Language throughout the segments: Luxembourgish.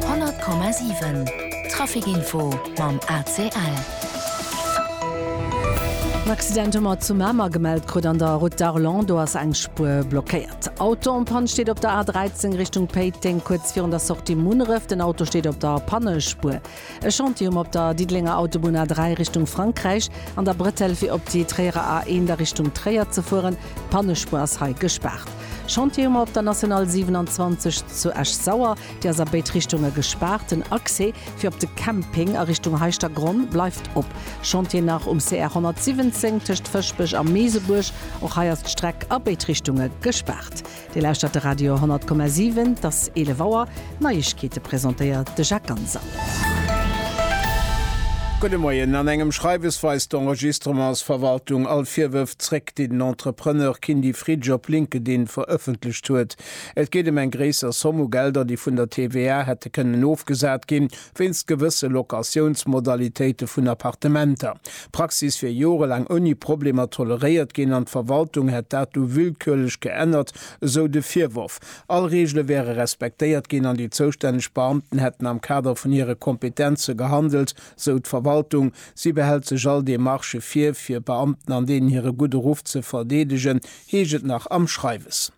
100,7 Trafic Info mam ACL. En Accident hu mer zu Mamer gemellt krut an der Route d'Arlon. Do ass eng Spuer blockéiert. Auto en panne steet op der A13 Richtung Péiteng, kuerz virun der Sortie Munneref. Den Auto steet op der Pannespuer. E Chantier um op der Diddelenger Autobunn A3 Richtung Frankräich an der Bretelle fir op déi Tréierer A1 a Richtung Tréier ze fueren. D'Pannespuer ass hei gespaart. Chantier um op der National 27 zu Esch-Sauer, déi ass a béid Richtunge gespaart. Den Accès fir op de Camping a Richtung Heischtergronn bleift op. Chantier nach um CR 117 tëscht Fëschbech a Meesebuerg. Och hei ass d'Streck a béid Richtunge gespaart. Dir lauschtert de Radio 10,7. Et ass 11 Auer. D'Neiegkeete presentéiert de Jacques Ganser. Gudde Moien. An engem Schreiwes weist d'Enregistrements-Verwaltung all Virwërf zréck, déi den Entrepreneur Kindy Fritsch op LinkedIn verëffentlecht huet. Et geet ëm eng gréisser Somm u Gelder, déi vun der TVA hätte kënnen ofgesat ginn, Wéinst gewësse Locatiounsmodalitéite vun Appartementer. D'Praxis wier jorelaang ouni Problemer toleréiert ginn an d'Verwaltung hätt dat du willkürlech geännert, esou de Virworf. All Reegele wäre respektéiert ginn an déi zoustänneg Beamten hätten am Kader vun hire Kompetenze gehandelt, sou d'Verwaltung. Si behält sech all Demarchë vir, fir Beamten an deenen hire gudde Ruff ze verdeedegen, heescht et nach am Schreiwes.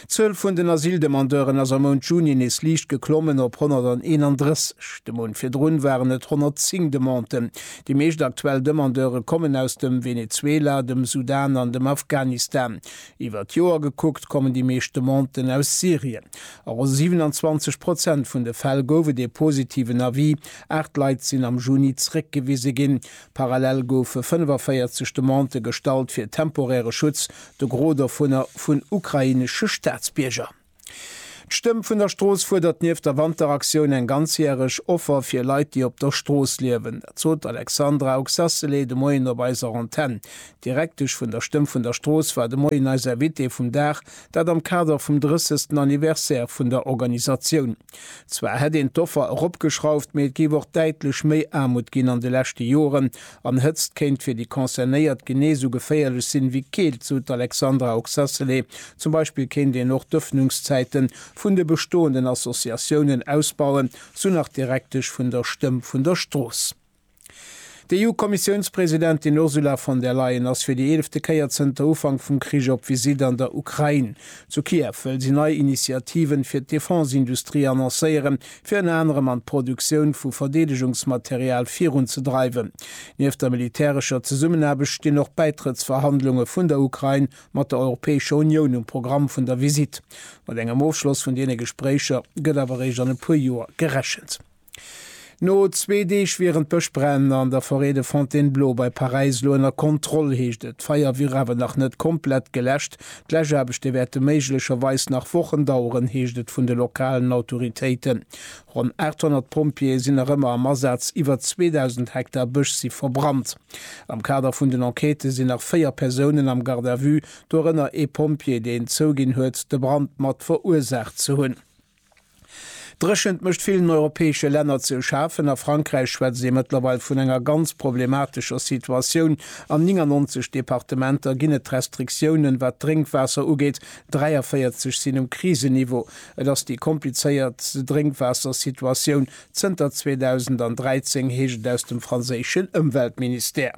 D'Zuel vun den Asyldemandeuren ass am Mount Juni nees liicht geklommen op 131. De Mount virdrun waren et 110 Demanden. Déi meescht aktuell Demandeure kommen aus dem Venezuela, dem Sudan an dem Afghanistan. Iwwer d'Joer gekuckt kommen déi meescht Demanden aus Syrien. A ronn 27 Prozent vun de Fäll gouf et ee positiven Avis. Aacht Leit sinn am Juni zeréckgewise ginn. Parallel goufe 45 Demandë gestallt fir temporäre Schutz, de Gros dovunner vun ukrainesche Staatsbierger. D'Stëmm vun der Strooss fuerdert nieft der Wanteraktioun eng ganzjäreg Offer fir Leit, déi op der Strooss liewen. Dat sot d'Alexandra Oxacelay de Moien op eiser Antenn. D'Direktesch vun der Stëmm vun der Strooss war de Moien eis Invitée vum Dag, dat am Kader vum 30. Anniversaire vun der Organisatioun. Zwar hätt een d'Offer eropgeschrauft, mee et géif och däitlech méi Aarmut ginn an de leschte Joren. An Hëtzt kéint fir déi Concernéiert genee esou geféierlech sinn, ewéi Keelt, sou d'Alexandra Oxacelé. Zum Beispill kéint een och d'Ëffnungszäite vun de bestoenden Associatiounen ausbauen, sou nach d'Direktesch vun der Stëmm vun der Strooss. D'EU-Kommissiounspresidentin Ursula von der Leyen ass fir déi eelefte Kéier zënter Ufank vum Krich op Visitt an der Ukrain. Zu Kiew wëll si nei Initiativen fir d'Defense-Industrie annoncéieren, fir ënner anerem an d'Produktioun vu Verdeedegungsmaterial virunzedreiwen. Nieft der militärescher Zesummenaarbecht stinn och d'Bäitrëttsverhandlunge vun der Ukrain mat der Europäescher Unioun um Programm vun der Visitt. Mat engem Ofschloss vun deene Gespréicher gëtt awer eréischt an e puer Joer gerechent. No zwee Deeg wieren d'Bëschbränn an der Forêt de Fontainebleau bei Paräis elo ënner Kontroll, heescht et. D'Feier wier awer nach net komplett geläscht. D'Läschaarbechte wäerte méiglecherweis nach Wochen daueren, heescht et vun de lokalen Autoritéiten. Ronn 800 Pompjeeë sinn nach ëmmer am Asaz, iwwer 2.000 Hektar Bësch si verbrannt. Am Kader vun den Enquêtë sinn nach véier Persounen am Garde à vue, dorënner ee Pompjee, deen zouginn huet, de Brand mat verursaacht ze hunn. D'Dréchent mécht villen europäesche Länner ze schafen. A Frankräich schwätzt ee mëttlerweil vun enger ganz problematescher Situatioun. An 99 Departementer ginn et d'Restriktiounen, wat d'Drénkwaasser ugeet, 43 sinn um Krisenniveau. Et ass déi komplizéiertst Drénkwaassersituatioun zënter 2013, heescht et aus dem franséischen Ëmweltministère.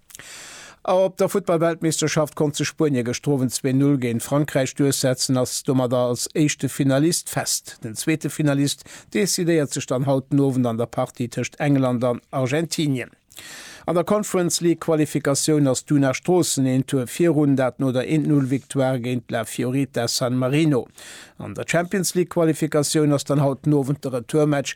Op der Futtballweltmeeschterschaft konnt sech Spuenie gëschter Owend 2, 0 géint Frankräich duerchsetzen, ass domadder als éischte Finalist fest. Den zweete Finalist decidéiert sech dann haut den Owend an der Partie tëscht England an Argentinien. An der Conference League Qualifikatioun ass d'Una Stroossen een Tour virun, dat no der 1, 0 Victoire géint La Fiorita San Marino. An der Champions League Qualifikatioun ass dann haut den Owend de Retourmatch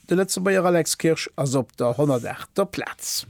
De Lëtzebuerger Alex Kirsch ass op der 108. Plaz.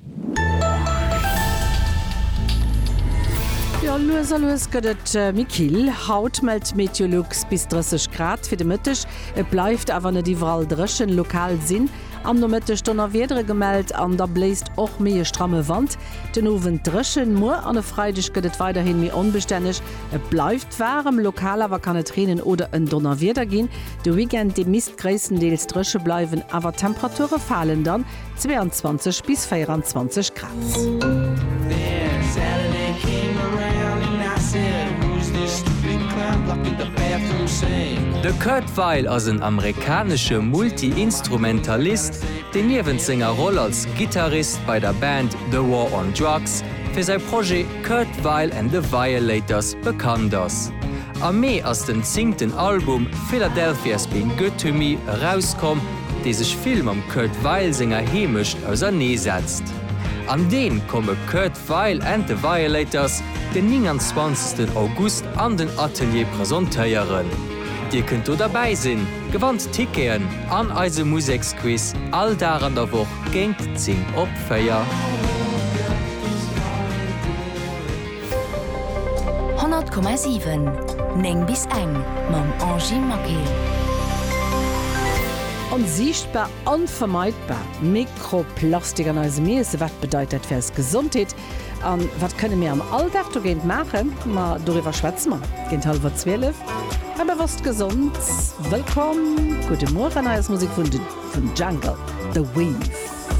Jo, lues a lues gëtt et méi kill. Haut mellt d'Meteolux bis 30 Grad fir de Mëtteg. Et bleift awer net iwwerall dréchen. Lokal sinn am Nomëtteg Donnerwiedere gemellt an da bléist och méi e stramme Wand. Den Owend dréchen, muer an e Freideg gëtt et weiderhin méi onbestänneg. Et bleift waarem, lokal awer kann et reenen oder en Donnerwieder ginn. De Weekend dee misst gréisstendeels dréche bleiwen, awer d'Temperature falen dann, 22 bis 24 Grad. De Kurt Weill ass en amerikanesche Multi-Instrumentalist, deen niewent senger Roll als Gittarist bei der Band The War on Drugs fir säi Projet Kurt Weill and the Violators bekannt ass. Am Mee ass den zingten Album Philadelphia's Been Good to Me erauskomm, dee sech vill mam Kurt Weill senger Heemecht ausernee setzt. An deen komme Kurt Weill and the Violators den 29 August an den Atelier presentéieren. Dir kënnt do derbäi sinn, gewannt Ticketen an eise Museksquiz all Dag an der Woch. Géint 10 op 4. Honnert Komma siwen, néng bis eng, mam Angie Maquet. Onsiichtbar, onvermeidbar Mikroplastik an eisem Iessen, wat bedeit dat fir eis Gesondheet? A wat kënne mir am Alldag dogéint maachen? Ma doriwwer schwätze mer géint hallwer 12. A bewosst gesond. Wëllkomm, gudde Mueren. Hei ass Musek vun The Jungle, The Weave.